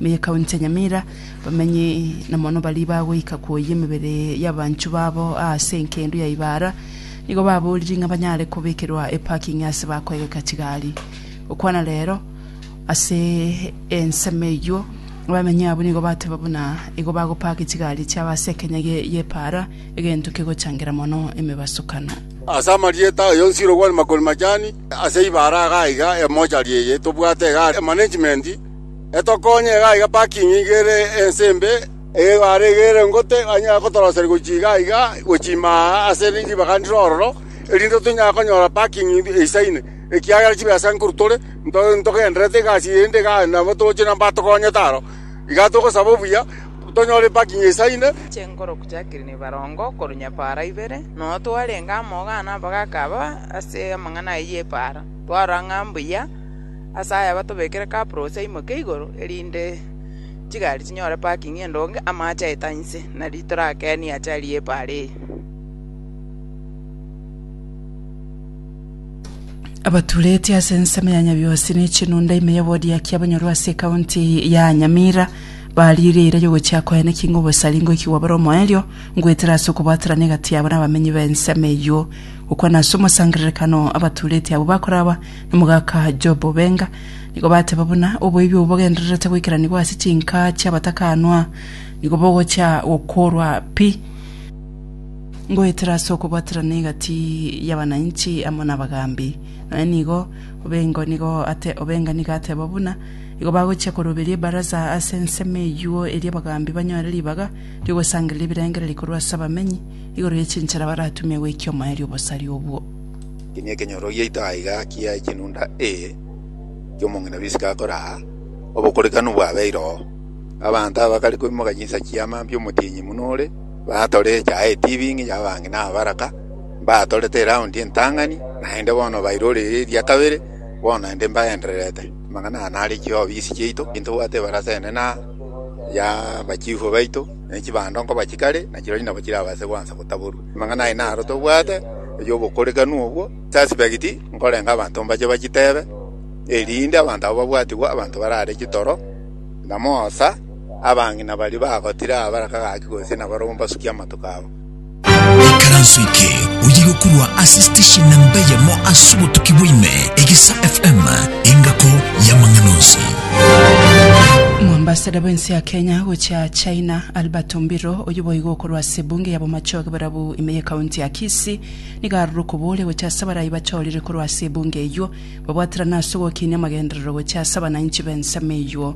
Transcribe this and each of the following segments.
Meye County ya Nyamira, bamenyi na mono baria bagoika koyia emebere y'abanchwa babo aase enkedu ya Ibara nigo baboriri ng'a banyare kobekerwa eparking aase bakoegeka chigari. Gokwana rero ase ensemo eyio abamenyi abwo nigo bateba buna igo bagopake chigari chiabo ase ekenya gie y'Ipara egento kegochangera mono emebasokano. Ase amarieta aye onsi Irogwani Makoni Majani ase Ibara iga aiga emochari eye tobwate iga management etokonye iga aiga parking iga ere ense embe, egware iga ere ngote, anyare gotoroseria gochia iga aiga, gochia ime aa ase ribaga ndire ororo, erinde tonyare konyora parking eisaine, ekiagera chibesa nkoru tore, nto ntogendererete egasi eye ende igaa nabo togochie na mbatogonyete aro. Igaa togosaba obuya, tonyore parking eisaine. Chinguru chakire na ebarongo korwa nyapaara ibere, noyo twarenge amo igaa na abagaaka aba ase amang'ana ayio y'epaara, twarora ng'a mbuya. Ase aya batobekere kapros aimoke igoro, erinde chigari chinyore parking endonge, amache aeta inse, na riitoro akeeni ache aria epaara eye. Abaturetie ase ensemo ya Nyabihosi ne chinunda ime y'ewodi ya Kiabonyoru ase ekaunti ya Nyamira bariire eira y'ogochia koeneki ng'a obosari ngoikigwa bore omoerio ngoetera ase okobwaterana egati yabo na abamenyi b'ensemo eyio. Gokwana ase omosangererekano abaturetie abwo bakoraba Omogaka Job Benga, nigo bateba buna oboibi obo bogendererete goikeranigwa ase chinka chi'abatakanwa, nigo bogochia gokorwa pi. Ngoetera ase okobwaterana egati y'abananchi amo n'abagaambi. Nonya nigo Obengo nigo ate Obenga nigo ateba buna igo bagochia koroberia ebaraza ase ensemo eyuo eria abagaambi banyore ribaga ri'ogosangereria ebirengererio korwa ase abamenyi igoro ye chinchera baratumie goikia omoerio obosari obwo. Eki nekenyoro giaito aiga kia chinunda A ki'omong'ina bw'isiko akore aa, obokorekanu bwabeire oo. Abanto aba bakare koimoka chinsa chi'amambia omotienyi muno ore, batore echaye etibing'i y'abang'ina abaraka, mbatorete eraundi entang'ani, naende bono bairorire eria kabere, bono inde mbagendererete. Amang'ana aya nare chiobi gisi chiaito, ntobwate ebarasa enene na y'abachifu baito, ne chibando nkoba chikare, na chirochio nabo chirabaase gwansa gotaborwa. Amang'ana aye naro tobwate, ay'obokorekanu obwo, suspect, nkorenge abanto mbache bachitebe, erinde abanto aba babwatigwe abanto barare chitoro, na moosa, abang'ina baria bagotire aa baraka gaki gose nabarobwo mbasukie amatuko abo. Ekaranso eke oyo igokorwa ase station namba eyemo ase obotuki bwa ime, Egesa FM, engako y'amang'ana onsi. Omwambasada bw'ense ya Kenya gochia China, Albert Ombiro, oyio boigo okorwa ase ase ebunge ya Bomachoge barabwo ime ye county ya Kisii nigo aroro koboria gocha ase abarai bachorire korwa ase ebunge eywo babwaterane ase ogokinia amagenderero gocha ase abananchi b'ensemo eywo.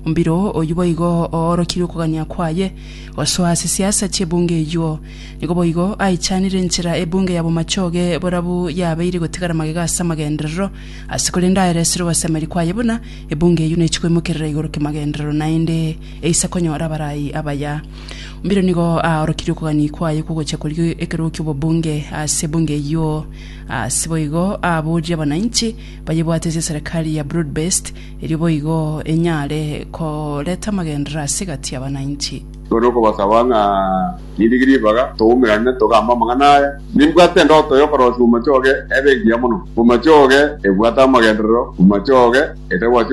Mbiro oyio boigo oorokirie okogania kwaye gosoa ase siasa chi'ebunge eywo. Nigo boigo aichanire enchera ebunge ya Bomachoge borabwo yabeire gotigara magega ase amagenderero ase korende aye resire ogosemeria kwaye buna ebunge eywo nechi koimokerera igoro kimagenderero naende eise konyora abarai abaya. Mbero nigo aorokirie okogania kwaye kw'ogocha koria ekerogo ki'obobunge ase ebunge eyio. Ase boigo aboorie abananchi bayebwate ase eserekari ya broad based erio boigo enyare koreta amagenderero ase egati y'abananchi. None okobasaba ng'a nirige ribaga toumerane togambe amang'ana aya. Nimbwate endoto y'okorosia bomachoge ebe engiya mono. Bomachoge ebwate amagenderero, bomachoge etagwasi obokima.